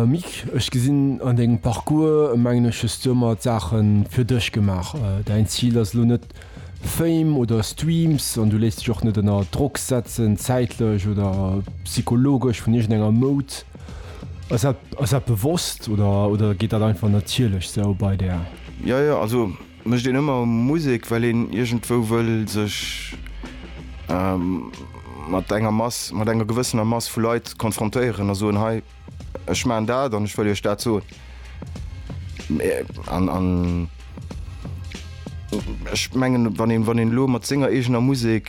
Mick, ech gesinn an dengem Parcours, mengen ech, hues du ëmmer d'Saache fir dech gemaach. Däin Zil ass elo net Fame oder Streams an du léisst dech och net ënner Drock setzen, zäitlech oder psychologesch vun iergendenger Moud. Ass dat bewosst oder geet dat einfach natierlech sou bei där? Mécht een ëmmer Musek, well een iergendwou wëll sech mat enger Mass, mat enger gewëssener Mass vu Leit konfrontéieren a soen, hei, ech maachen dat an ech wëll iech dat soen. An ech mengen, wann een, wann een elo mat senger eegener Musek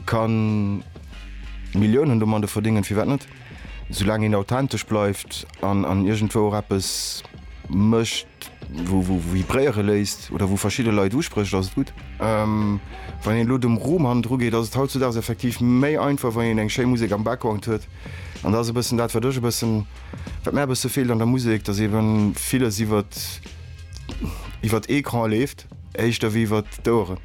ka Milliounen domadde verdéngen, firwat net? Soulaang een authentesch bleift an an iergendwou och eppes mécht, wou vibréiere léisst oder wou verschidde Leit usprécht, ass et gutt. Wann een elo dem Ruhm hannendru geet, ass et hautzudaags effektiv méi einfach, wann een eng schéi Musek am Background huet. An dat ass e bëssen dat, wat ech e bëssen, wat mär e bësse feelt an der Musek, datt ebe villes iwwert, iwwert Ecran leeft éischter wéi iwwert d'Oueren.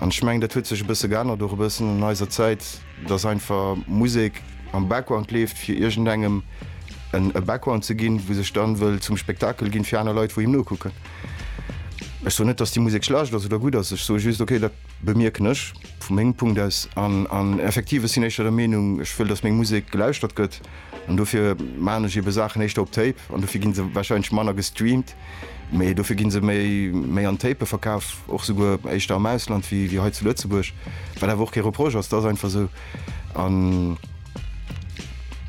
An ech mengen, dat huet sech e bësse geännert, och e bëssen an eiser Zäit, dass einfach Musek am Background leeft, fir iergendengem en e Background ze ginn, wou sech dann wëll zum Spektakel ginn, fir aner Leit, wou him nokucken. Ech soen net, dass déi Musek schlecht ass oder gutt ass. Ech soe just, okay, dat bemierken ech vu mengem Punkt aus. An, an effektiv, ech sinn éischter der Meenung, ech wëll, dass meng Musek gelauschtert gëtt. An dofir maachen ech eebe Saachen éischter op Tape, an dofir gi se warscheinlech manner gestreamt. Mee dofir gi se méi méi an Tape verkaf, och souguer éischter am Ausland wéi wéi hei zu Lëtzebuerg, wat awer och kee Reproche ass, dat ass einfach esou. An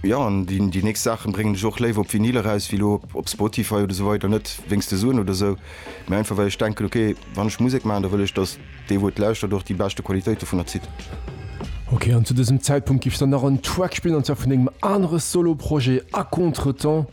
jo, an déi déi nächst Saache bréngen ech och léiwer op Vinyl eraus wéi elo op Spotify oder esou weider. Net wéinst de Suen oder esou, mee einfach well ech denken, ok, wann ech Musek maachen, da wëll ech, datt dee wou et lauschtert och déi beschte Qualitéit dovunner zitt. Ok, an zu dësem Zäitpunkt giff s der nach en Track spillen, an zwar vun dengem anere Solo-Projet A Contretemps.